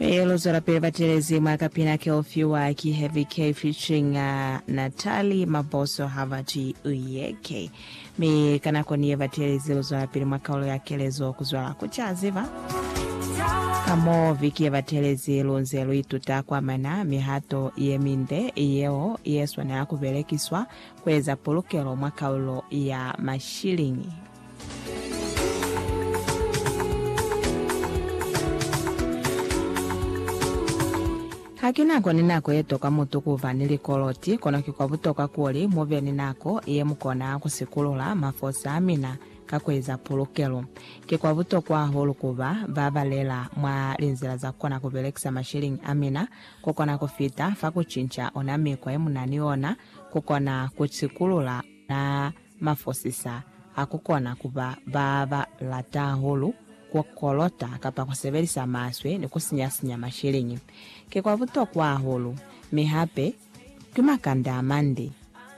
Ee, lu zwelapili batelezi mwa kapina ke u fiwa ki Heavy K featuring Natalie Maboso ha ba ki U Ye Ke. Mi ka nako ni ye batelezi lu zwelapili mwa kaulo ya kelezo ku zwala ku ca ziba. Ka mo viki ye batelezi lu nze lu ituta ku amana mihato ye minde yeo ye swanela ku belekiswa ku eza pulukelo mwa kaulo ya mashiliñi. Ha ki nako ni nako ye toka mutu ku ba ni likoloti, kono ki kwa butokwa kuli mu be ni nako ye mu kona ku sikulula mafosi a mina ka ku eza pulukelo. Ki kwa butokwa hahulu ku ba ba balela mwa linzila za ku kona ku belekisa masheleñi a mina ku kona ku fita fa ku cinca ona mikwa ye mu na ni ona ku kona ku sikulula Na mafosisa a ku kona ku ba ba ba lata hahulu, ku kolota kapa ku sebelisa maswe ni ku sinya-sinya masheleñi. Ki kwa butokwa hahulu, mi hape ki makanda a mande.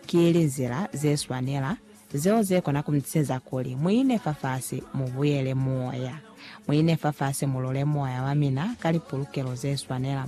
Ki linzila ze swanela zeo ze kona ku mi tiseza kuli mu ine fafasi mu buyele moya. Mu ine fafasi mu lule moya wa mina ka lipulukelo ze swanela.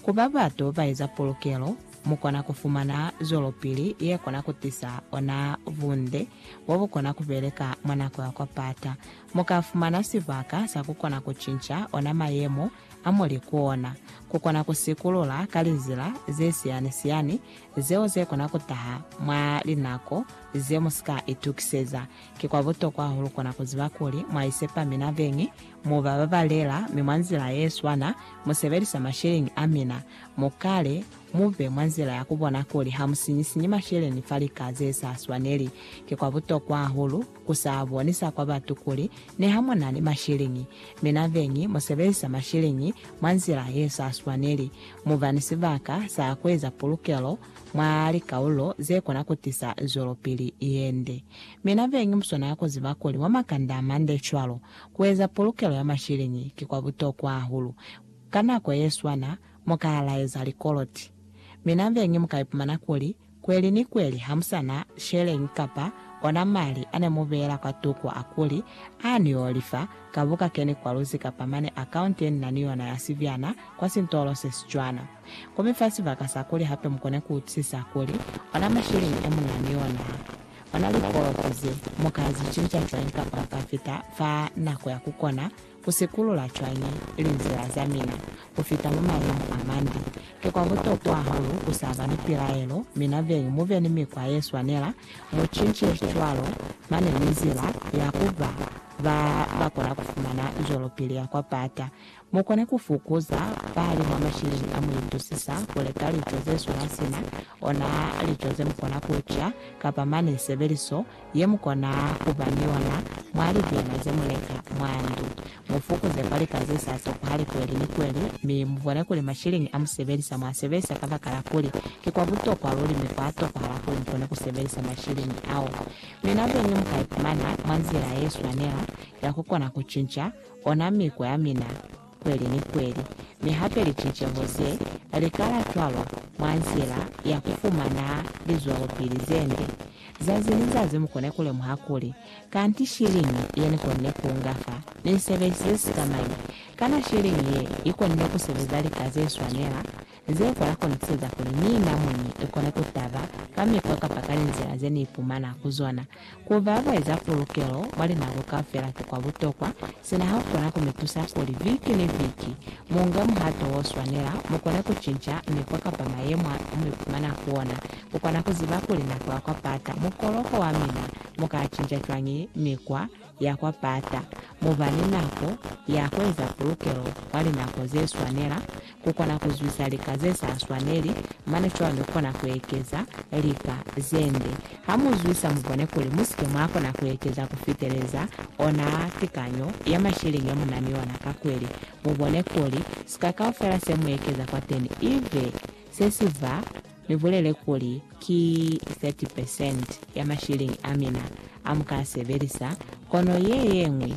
Ku ba bato ba eza pulukelo mu kona ku fumana zwelopili ye kona ku tisa ona bunde bo bu kona ku beleka mwa nako ya kwa pata. Mu ka fumana sibaka sa ku kona ku cinca ona mayemo a mu li ku ona, ku kona ku sikulula ka lizila ze siyani-siyani zeo ze kona ku taha mwa linako ze mu si ka itukiseza. Ki kwa butokwa hahulu kona ku ziba kuli mwa isepa mina beñi, mu ba babalela, mi mwa nzila ye swana mu sebelisa masheleñi a mina. Mu kale, mu be mwa nzila ya ku bona kuli ha mu sinyi-sinyi masheleñi fa lika ze sa swaneli. Ki kwa butokwa hahulu ku sa bonisa kwa batu kuli niha mu na ni masheleñi, mi na beñi mu sebelisa masheleñi mwa nzila ye sa swaneli, mu ba ni sibaka sa ku eza pulukelo mwa likaulo ze kona ku tisa zwelopili ye nde. Mi na beñi mu swanela ku ziba kuli mwa makanda a mande cwalo, ku eza pulukelo ya masheleñi ki kwa butokwa hahulu. Ka nako yeswana, mukaya laeza likoloti. Mi nambeñi mukaipumana kuli, kweli ni kweli hamusana sheleñi kapa ona mali ane mubeela kwa tuku a kuli, Aa ni yo lifa, ka buka keni kwa luzi kapa mane akaunti yenina ni yona ya sibyana kwa sintolo se sicwana. Ku mi fa sibaka sa kuli hape mukone ku utusisa kuli, ona mashilingi e muna ni onaa. Ona likoloti ze, muka zicinca cwañi kapa muka fita fa nako ya kukona Ku sikulula cwañi linzila za mina ku fita mwa malimo a mande? Ki kwa butokwa hahulu ku sa ba ni pilaelo, mi nabeñi mu be ni mikwa ye swanela. Mu cince cwalo, mane ni nzila ya ku ba ba ba kona ku fumana zwelopili ya kwa pata. Mu kone ku fukuza pali mwa masheleni a mu itusisa ku leka lico ze swana sina ona lico ze mu kona ku ca, kapa mane sebeliso ye mu kona ku ba ni yona mwa lipima ze mu leka mwa ndu. Mu fukuze kwa lika ze sa sepuhali kweli ni kweli mi mu bone kuli mashiliñi a mu sebelisa mwa sebelisa kabakala kuli ki kwa butokwa luli mi kwa tokohala kuli mu kone ku sebelisa mashiliñi ao. Mina beñi mu ka ipumana mwa nzila ye swanela ya ku kona ku cinca ona miko ya mina. kweli ni kweli, mi hape liciceho ze likala cwalo mwa nzila ya kufumana lizwelopili zende. Zazi ni zazi mukone kulemuha kuli, Kanti shiliñi ye nikonne kuunga fa? Nisebelisize sikamañi? Kana shiliñi ye ikonne kusebeza lika zeswanela? Jehova ya kona kueza kuli ni namuni i kone ku taba ka mikwa kapa ka linzila ze ni ipumana ku zona. Ku ba ba eza pulukelo mwa linako kaufela ki kwa butokwa, sina ha ku kona ku mi tusa kuli viki ni viki mu nge muhato o swanela, mu kone ku cinca mikwa kapa mayemo a mu ipumana ku ona. Ku kona ku ziba kuli na kula kwa pata mukoloko wa mina, mu ka cinca cwañi mikwa? ya kwa pata, mu ba ni nako ya ku eza pulukelo kwa linako ze swanela, ku kona ku zwisa lika ze sa swaneli, mane cwalo mi ku kona ku ekeza lika ze nde. Ha mu zwisa, mu bone kuli mu si ke mwa kona ku ekeza ku fiteleza ona tikanyo ya masheleñi ya mu na ni ona ka kweli. Mu bone kuli sika kaufela se mu ekeza kwateni i be se si ba Ni bulele kuli, Ki 30 percent ya mashilingi a mina a mu ka a sebelisa, kono ye yeñwi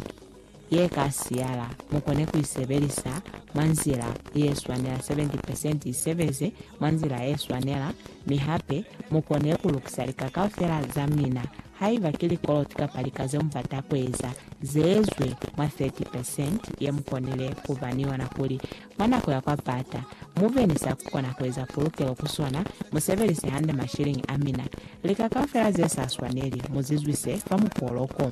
ye ka siyala, mu kone ku i sebelisa mwa nzila ye swanela. 70 percent i sebeze mwa nzila ye swanela, mi hape mu kone ku lukisa lika kaufela za mina. Haiba ki likoloti kapa lika ze mu bata ku eza, ze ezwe mwa 30 percent ye mu konile ku ba ni yona kuli Mwa nako ya kwa bata, mu be ni sa ku kona ku eza pulukelo ku sona, mu sebelise hande mashiliñi a mina. Lika kaufela ze sa swaneli, mu zizwise kwa mukoloko.